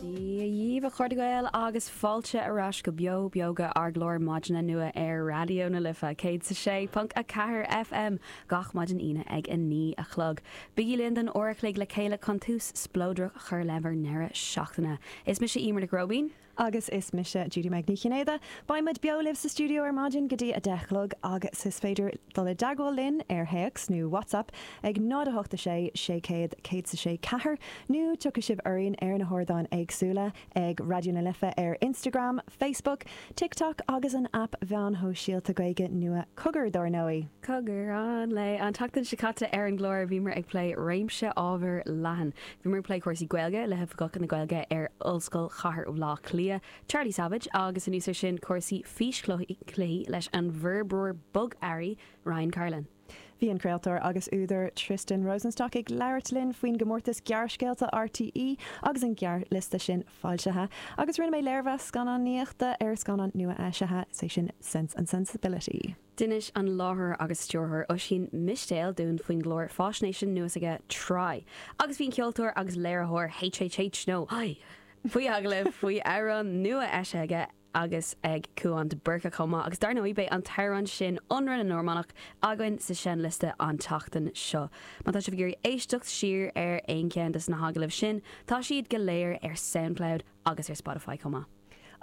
Dia dhíbh, a chairde Gael, agus fáilte ar ais go Beo Beoga, ár gclár maidine nua ar Raidió na Life 106.4 FM, gach maidin Aoine ag a naoi a chlog. Bígí linn don uair a chloig le chéile chun tús spleodrach a chur le bhur ndeireadh seachtaine. Is mise Emer Nic Róibín. Agus is mise Judy-Meg Ní Chinnéide. Beidh muid beo libh sa stiúideo ar maidin go dtí a deich a chlog agus is féidir dul i dteagmháil linn ar théacs nó WhatsApp ag 0 8 6 600 106 4 nó tiocfaidh sibh orainn ar na hardáin éagsúla ag Raidió na Life ar Instagram, Facebook, TikTok agus an aip mheáin shóisialta Gaeilge nua Cogar dar ndóigh! Cogar an lae! An tseachtain seo caite ar an gclár bhíomar ag plé réimse ábhair leathan. Bhíomar ag plé cúrsaí Gaeilge le hOifigeach na Gaeilge ar Ollscoil Chathair Bhaile Átha Cliath, Charlie Savage, agus anuas air sin cúrsaí físchluichí leis an bhforbróir bogearraí Ryan Carlin. Bhí an craoltóir agus údar Tristan Rosenstock ag labhairt linn faoin gcomórtas gearrscéalta RTÉ agus an gearrliosta sin foilsithe agus rinne mé léirmheas scannánaíochta ar an scannán nua-eisithe, is é sin Sense and Sensibility. D'inis an láithreoir agus stiúrthóir Oisín Mistéil dúinn faoin gclár fáisnéise nua s'aige, Tráigh, agus bhí an ceoltóir agus léiritheoir HHH nó Haigh! faoi agallamh faoi amhrán nua eisithe aige agus ag Cúán de Burca chomh maith, agus dar ndóigh beidh an t-amhrán sin Ionradh na Normánach againn sa seinnliosta an tseachtain seo. Má tá sibh ag iarraidh éisteacht siar ar aon cheann de na hagallaimh sin, tá siad go léir ar Soundcloud. agus ar Spotify chomh maith.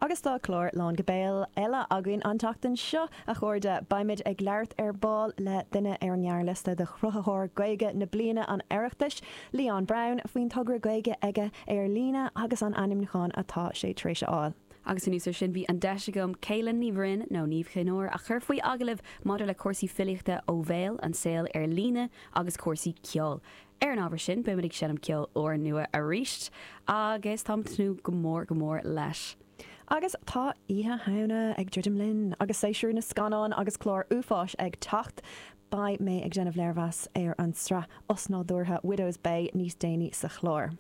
Agus tá clár lán go béal eile againn an tseachtain seo, a chairde! Beimid ag labhairt ar ball le duine ar ghearrliosta Chruthaitheoir Gaeilge na Bliana an Oireachtais, Leon Brown, faoin togra Gaeilge aige ar líne agus an ainmniúchán atá sé tar éis a fháil. Agus anuas air sin, bhí an deis agam Caolan Ní Bhroin, nó Niamh Chinn Óir, a chur faoi agallamh maidir le cúrsaí filíochta ó bhéal, an saol ar líne agus cúrsaí ceoil. Ar an ábhar sin, beimid ag seinm ceol úrnua arís agus táim ag tnúth go mór go mór leis. Agus tá Oíche Shamhna ag druidim linn agus séasúr na scannán agus clár uafáis ag teacht, beidh mé ag déanamh léirmheas ar an tsraith osnádúrtha Widow's Bay níos déanaí sa chlár.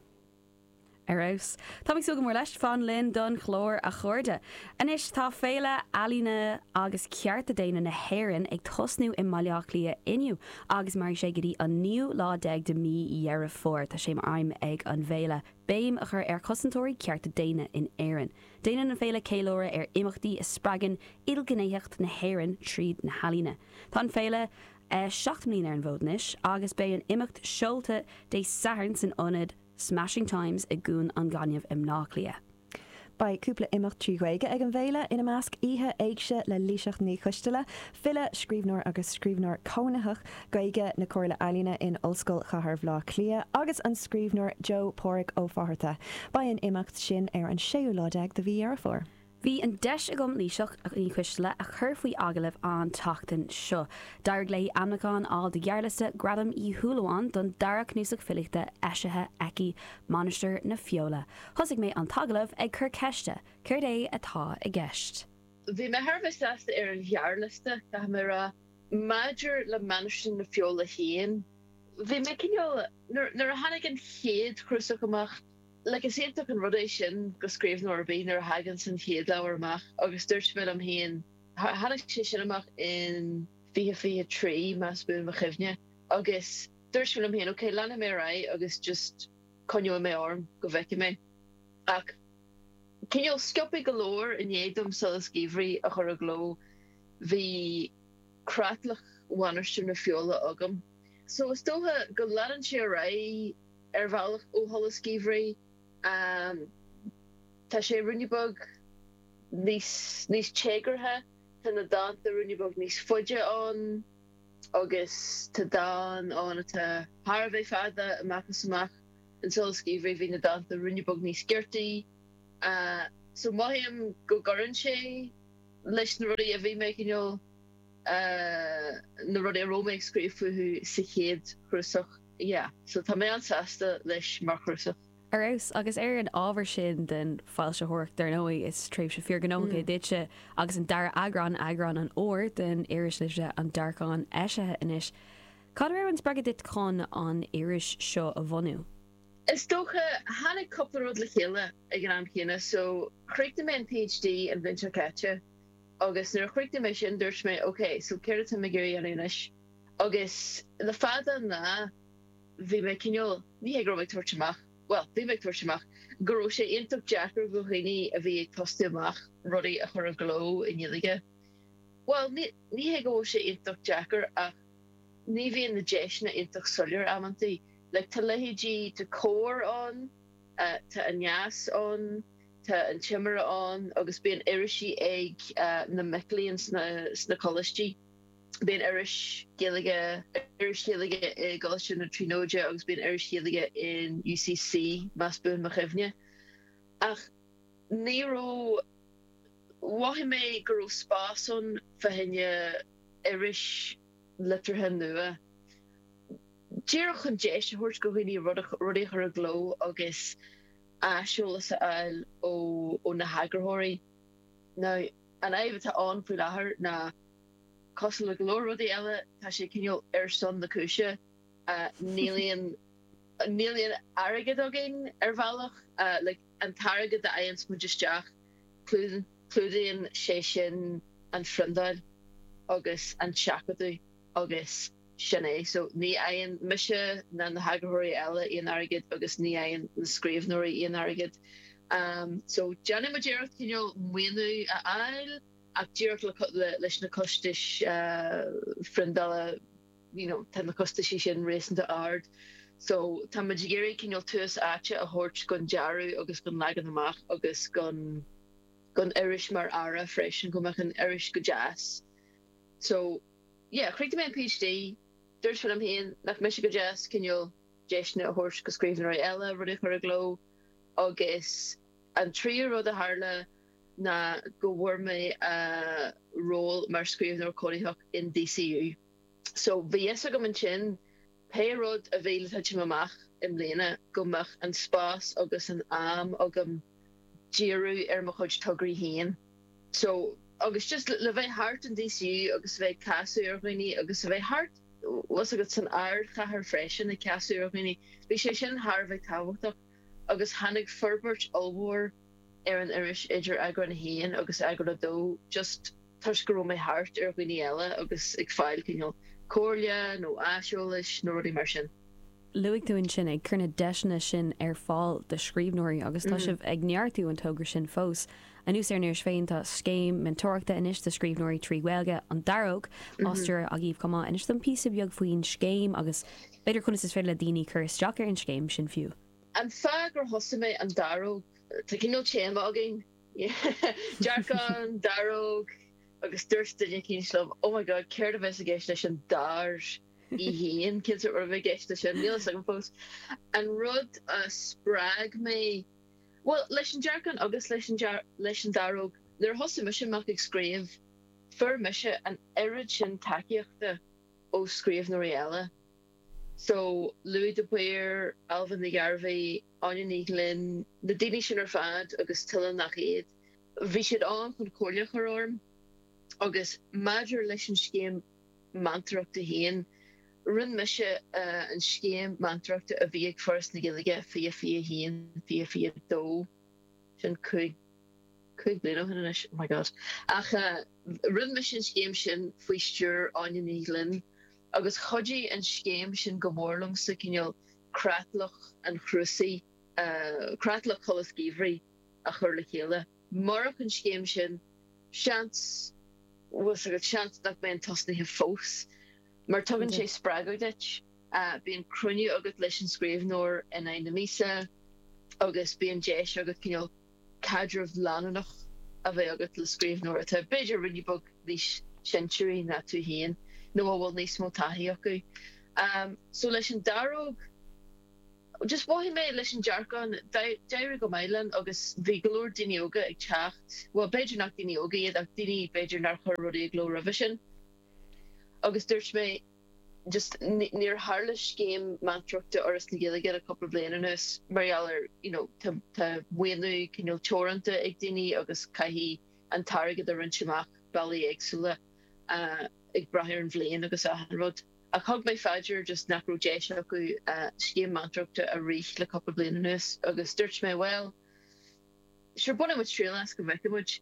Ar fheabhas. Táimid ag súil go mór leis. Fan linn don chlár a chairde. Anois tá Féile Ealaíne agus Cearta Daonna na hÉireann ag tosnú i mBaile Átha Cliath inniu agus mairfidh sé go dtí an naoú lá déag de mí Dheireadh Fómhair. Tá sé mar aidhm ag an bhféile béim a chur ar chosantóirí cearta daonna in Éirinn. Déanann an féile ceiliúradh ar imeachtaí a spreagann ilghnéitheacht na hÉireann tríd na healaíona. Tá an féile. Seacht mbliana ar an bhfód anois agus beidh an imeacht seolta Dé Sathairn san ionad Smashing Times i gCuan an Ghainimh i mBleá Cliath. Beidh cúpla imeacht trí Ghaeilge ag an bhféile, ina measc, oíche éigse le Laoighseach Ní Choistealbha, file, scríbhneoir agus scríbhneoir cónaitheach Gaeilge na Comhairle Ealaíne in Ollscoil Chathair Bhleá Cliath, agus an scríbhneoir Joe Páraic Ó Fátharta. Beidh an imeacht sin ar an séú lá déag de mhí Dheireadh Fómhair. Bhí an deis agam Laoighseach Ní Choistealbha a chur faoi agallamh an tseachtain seo. D'éirigh léi ainmniúchán a fháil do ghearrliosta Ghradam Uí Shúilleabháin don dara cnuasach filíochta eisithe aici, Mainistir na Feola. Thosaigh mé an t-agallamh ag cur ceiste, céard é atá i gceist? Bhí mé thar a bheith sásta ar an ghearrliosta, caithfidh mé a rá. Maidir le Mainistir na Feola féin, bhí mé cineál, nuair a tháinig an chéad chnuasach amach, Like, is iontach an rud é sin do scríbhneoir ar bith nuair a thaganns an chéad leabhar amach agus dúirt mé liom féin, tháinig sé sin amach in fiche fiche trí más buan mo chuimhne, agus dúirt mé liom féin, ok, leanfaidh mé ar aghaidh agus just coinneoidh mé orm go bhfeicfidh mé. Ach cineál sciobtha go leor i ndiaidh dom Solas Geimhridh a chur i gcló, bhí creatlach Mhainistir na Feola agam. So is dócha go leanann sé ar aghaidh. ar bhealach ó Sholas Geimhridh. Tá sé ruainne beag níos téagartha, tá na dánta ruainne beag níos faide ann agus tá dán ann atá thar a bheith fada, amach is amach. In Solas Geimhridh bhí na dánta ruainne beag níos giortaí. So mothaím go gcuireann sé leis na rudaí a bhí mé cineál, na rudaí a raibh mé ag scríobh fúthu sa chéad chnuasach. yeah so tá mé an-sásta leis mar chnuasach. Ar fheabhas. Agus ar an ábhar sin den foilsitheoireacht, dar ndóigh, is tréimhse fíorghnóthach é duitse agus an dara heagrán, eagrán an Fhómhair, den iris liteartha An Dearcán eisithe anois. Cad a raibh an spreagadh duit chun an iris seo a bhunú? Is dócha, tháinig cúpla rud le chéile ag an am céanna. So, chríochnaigh mé an PhD an bhliain seo caite agus nuair a chríochnaigh mé sin, dúirt mé, OK, so céard atá mé ag iarraidh a dhéanamh anois? Agus le fada an lá, bhí mé cineál, ní hé go raibh mé ag tabhairt amach, bhuel, bhí mé ag tabhairt amach go raibh sé iontach deacair do dhaoine a bhí ag tosú amach rudaí a chur i gcló i nGaeilge. Bhuel, ní hé go bhfuil sé iontach deacair ach ní bhíonn na deiseanna iontach soiléir amantaí. Like, tá leithéidí, tá Comhar ann, tá Aneas ann, tá An Timire ann agus bíonn irisí ag na mic léinn sna coláistí. Bíonn iris Ghaeilge iris Ghaeilge i gColáiste na Tríonóide agus bíonn iris Ghaeilge in UCC, más buan mo chuimhne. Ach ní raibh, mhothaigh mé go raibh spás ann fá choinne iris liteartha nua, díreach chun deis a thabhairt go dhaoine rudaí a chur i gcló agus aiseolas a fháil ó na heagarthóirí. Now, an fhadhb atá ann faoi láthair ná. Cosúil le go leor rudaí eile, tá sé cineál ar son na cúise. Níl aon, níl aon airgead againn ar bhealach, an t-airgead a fhaigheanns muid isteach, clúdaíonn sé sin an phriondáil agus an seachadadh agus sin é. So ní fhaigheann mise ná na heagarthóirí eile aon airgead agus ní fhaigheann na scríbhneoirí aon airgead. So déanann muid iarracht cineál maoiniú a fháil. ach díreach leis na costais phriondála you know tá na costaisí sin réasúnta ard so tá muid ag iarraidh cineál tús áite a thabhairt gon dearadh agus gon leagan amach agus gon gon iris mar earra freisin go mbeadh an iris go deas so yeah chríochnaigh mé an PhD dúirt mé liom fhéin nach mbeadh sé go deas cineál deiseanna a thabhairt go scríbhneoirí eile rudaí a chur i gcló agus an tríú rud a tharla ná go bhfuair mé ról mar scríbhneoir cónaitheach in DCU. So, bhí a fhios agam ansin, pé rud a bhí le titim amach i mbliana, go mbeadh an spás agus an am agam díriú ar mo chuid tograí féin. So, agus just le bheith thart in DCU agus a bheith ag casadh ar dhaoine agus le bheith thart, bhfuil a fhios agat, san ardchathair freisin, ag casadh ar dhaoine, bhí sé sin thar a bheith tábhachtach agus tháinig forbairt ollmhór, ar an iris idir eagrán 1 agus eagrán 2 just toisc go raibh mé thart ar dhaoine eile agus ag fáil cineál comhairle nó aiseolais nó rudaí mar sin. Luaigh tú ansin ag cur na deiseanna sin ar fáil do scríbhneoirí agus tá sibh ag neartú an togra sin fós. Anuas ar an iris féin tá scéim meantóireachta anois do scríbhneoirí trí Ghaeilge, An Daróg, á stiúradh agaibh chomh maith. Inis dom píosa beag faoin scéim agus b'fhéidir conas is féidir le daoine cur isteach ar an scéim sin fiú. An fáth gur thosaigh mé an daróg. Tá cineál téama againn, dearcán, daróg agus dúirt duine eicínt liom, oh my god céard a bheas i gceist leis an dair í fhéin, cén sórt rud a bheidh i gceist leis sin, níl a fhios agam fós. An rud a spreag mé, bhuel leis an dearcán agus leis an leis an daróg, nuair a thosaigh mise amach ag scríobh fuair mise an oiread sin tacaíochta ó scríbhneoirí eile. So, Louis de Paor, Ailbhe Ní Ghearbhaigh, Áine Ní Ghlinn, na daoine sin ar fad agus tuilleadh nach iad, bhí siad ann chun comhairle a chur orm agus maidir leis an scéim meantóireachta féin, rinne mise an scéim meantóireachta a bhí ag Foras na Gaeilge, fiche, fiche 1, fiche, fiche 2, sin cúig, cúig bliana ó shin anois, oh my God, ach eh rinne mise an scéim sin faoi stiúir Áine Ní Ghlinn. agus chuidigh an scéim sin go mór liomsa cineál creatlach an chnuasaigh, creatlach Sholas Geimhridh, a chur le chéile. Murach an scéim sin, seans, bhfuil 's agat, seans nach mbeinn tosnaithe fós, mar tugann sé spreagadh duit, bíonn cruinniú agat leis an scríbhneoir in aghaidh na míosa agus bíonn deis agat cineál caidreamh leanúnach a bheith agat le scríbhneoir atá b'fhéidir ruainne beag níos sinsearaí ná tú féin nó a bhfuil níos mó taithí acu. So leis an daróg, just mhothaigh mé leis an dearcán, d'éirigh go maith liom agus bhí go leor daoine óga ag teacht, bhuel b'fhéidir nach daoine óga iad ach daoine b'fhéidir nár chuir rudaí i gcló roimhe sin agus dúirt mé, just níor tharla scéim meantóireachta Fhoras na Gaeilge le cúpla bliain anuas mar gheall ar you know tá maoiniú cineál teoranta ag daoine agus caithfidh an t-airgead a roinnt amach bealaí éagsúla ag brath ar an bhliain agus achan rud ach thug mé faoi deara just nach raibh deis acu scéim meantóireachta a rith le cúpla bliain anuas agus dúirt mé bhuel sure bainfidh muid triail as go bhfeicfidh muid.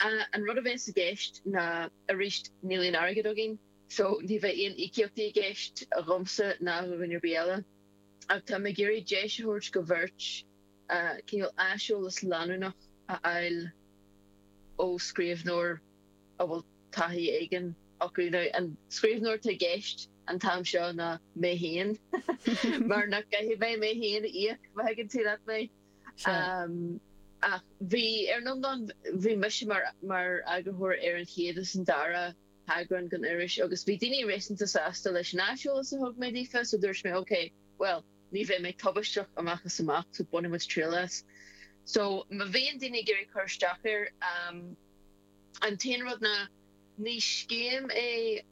A, An rud a bheas i gceist ná, arís, níl aon airgead againn so ní bheidh aon íocaíochtaí i gceist dhomsa ná do dhuine ar bith eile ach táim ag iarraidh deis a thabhairt go bheirt cineál aiseolas leanúnach a fháil ó scríbhneoir a bhfuil taithí éigin acu. Now an scríbhneoir atá i gceist an t-am seo ná mé féin mar nach gcaithfidh mé mé féin a íoc, má thuigeann tú leat mé. Sea. Ach bhí, ar an iomlán, bhí mise mar eagarthóir ar an chéad is an dara heagrán den iris agus bhí daoine réasúnta sásta leis an aiseolas a thug mé daofa so dúirt mé ok, bhuel, ní bheidh mé tubaisteach amach is amach so bainfidh muid triail as. So má bhíonn daoine ag iarraidh cur isteach air, an t-aon rud ná ní scéim é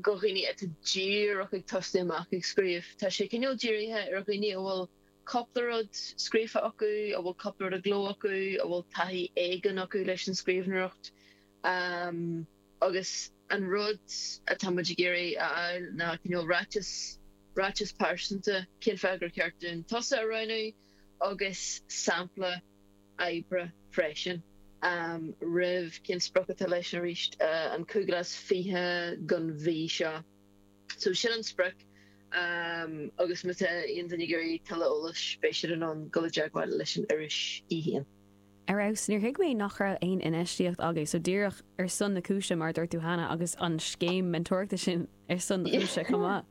go dhaoine atá díreach ag tosaí amach ag scríobh. Tá sé cineál dírithe ar dhaoine a bhfuil cúpla rud scríofa acu, a bhfuil cúpla rud i gcló acu, a bhfuil taithí éigin acu leis an scríbhneoireacht. Agus an rud atá muid ag iarraidh a fháil ná cineál ráiteas, ráiteas pearsanta, cén fáth gur cheart dúinn tusa a roghnú agus sampla oibre freisin roimh cén sprioc atá leis arís an cúig lá is fiche den mhí seo. So sin an sprioc agus má tá aon duine ag iarraidh tuilleadh eolais beidh siad in ann dul i dteagmháil leis an iris í fhéin. Ar fheabhas. Níor thuig mé nach raibh aon infheistíocht agat so díreach ar son na cúise mar a dúirt tú cheana agus an scéim meantóireachta sin ar son na cúise chomh maith.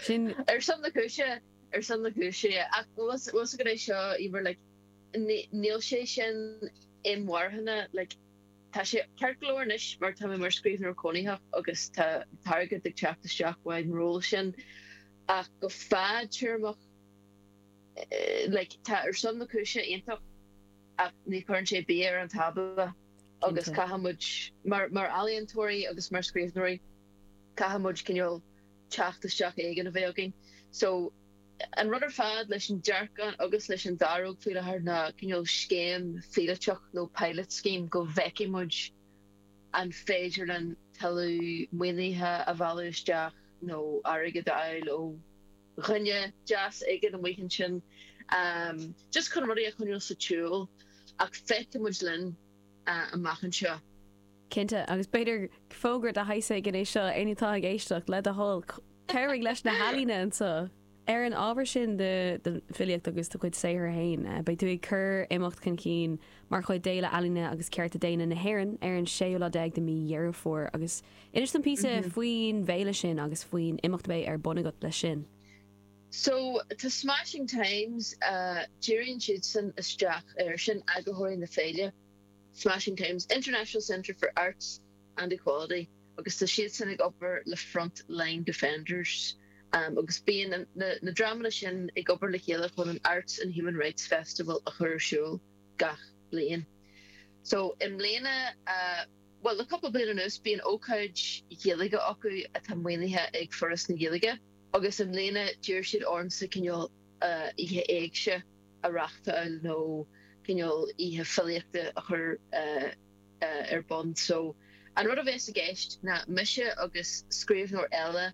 Sin. Ar son na cúise, ar son na cúise yeah. Ach bhfuil 's agat é seo Emer like níl sé sin inmharthana like, Tá sé ceart go leor anois mar tá mé mar scríbhneoir cónaitheach agus tá m'airgead ag teacht isteach uaidh an ról sin ach go fadtéarmach like tá ar son na cúise iontach ach ní chuireann sé bia ar an tábla agus caithfidh muid mar mar ealaíontóirí agus mar scríbhneoirí caithfidh muid cineál teacht isteach éigin a bheith againn so An rud ar fad leis an Dearcán agus leis an Daróg faoi láthair ná cineál scéim phíolótach nó pilot scheme go bhfeicfidh muid an féidir linn tuilleadh maoinithe a mhealladh isteach nó airgead a fháil ó dhuine deas éigin amuigh ansin just chun rudaí a choinneáil sa tsiúl ach feicfidh muid linn amach anseo. Cinnte, agus b'fhéidir fógra de shaghas éigin é seo, éinne atá ag éisteacht, le do thoil, cabhraigh leis na healaíona anseo! Ar an ábhar sin de do filíocht agus do chuid saothar féin, beidh tú ag cur imeacht chun cinn mar chuid d'Fhéile Ealaíne agus Cearta Daonna na hÉireann ar an séú lá déag de mhí Dheireadh Fómhair agus inis dom píosa faoin bhféile sin agus faoin imeacht a bheidh ar bun agat leis sin. So, tá Smashing Times, díríonn siadsan isteach air sin, eagarthóirí na féile. Smashing Times, International Centre for Arts and Equality agus tá siadsan ag obair le Front Line Defenders agus bíonn na dreamanna sin ag obair le chéile chun an Arts and Human Rights Festival a chur ar siúl gach bliain. So i mbliana, bhuel le cúpla bliain anuas, bíonn ócáid Ghaeilge acu atá maoinithe ag Foras na Gaeilge agus i mbliana d'iarr siad ormsa cineál oíche éigse a. a reachtáil nó cineál oíche filíochta a chur ar bun so an rud a bheas i gceist ná mise agus scríbhneoir eile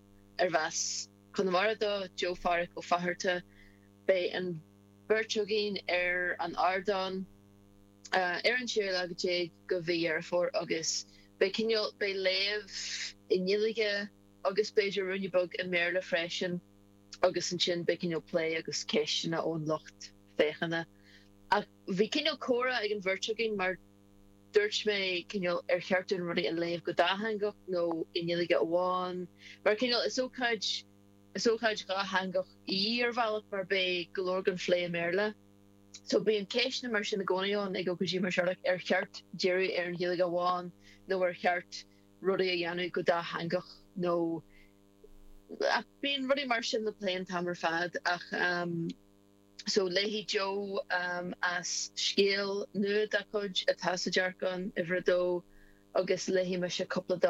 arb as Conamara dó, Joe Phádhraic Ó Fatharta, beidh an bheirt againn ar an ardán ar an séú lá déag de mhí Dheireadh Fómhair agus beidh cineál, beidh léamh i nGaeilge agus b'fhéidir ruainne beag i mBéarla freisin. agus ansin beidh cineál plé agus ceisteanna ón lucht féachana. Ach bhí cineál comhrá ag an bheirt againn mar dúirt mé cineál ar cheart dúinn rudaí a léamh go dátheangach nó i nGaeilge amháin mar cineál is ócáid, is ócáid dhátheangach í ar bhealach mar beidh go leor den phlé i mBéarla. So bíonn ceisteanna mar sin i gcónaí ann ag ócáidí mar seo like ar cheart díriú ar an Ghaeilge amháin nó ar cheart rudaí a dhéanamh go dátheangach nó Ach bíonn rudaí mar sin le plé an t-am ar fad. Ach so, léifidh Jo as scéal nua dá cuid atá sa dearcán, uimhir a dó, agus léifidh mise cúpla dán.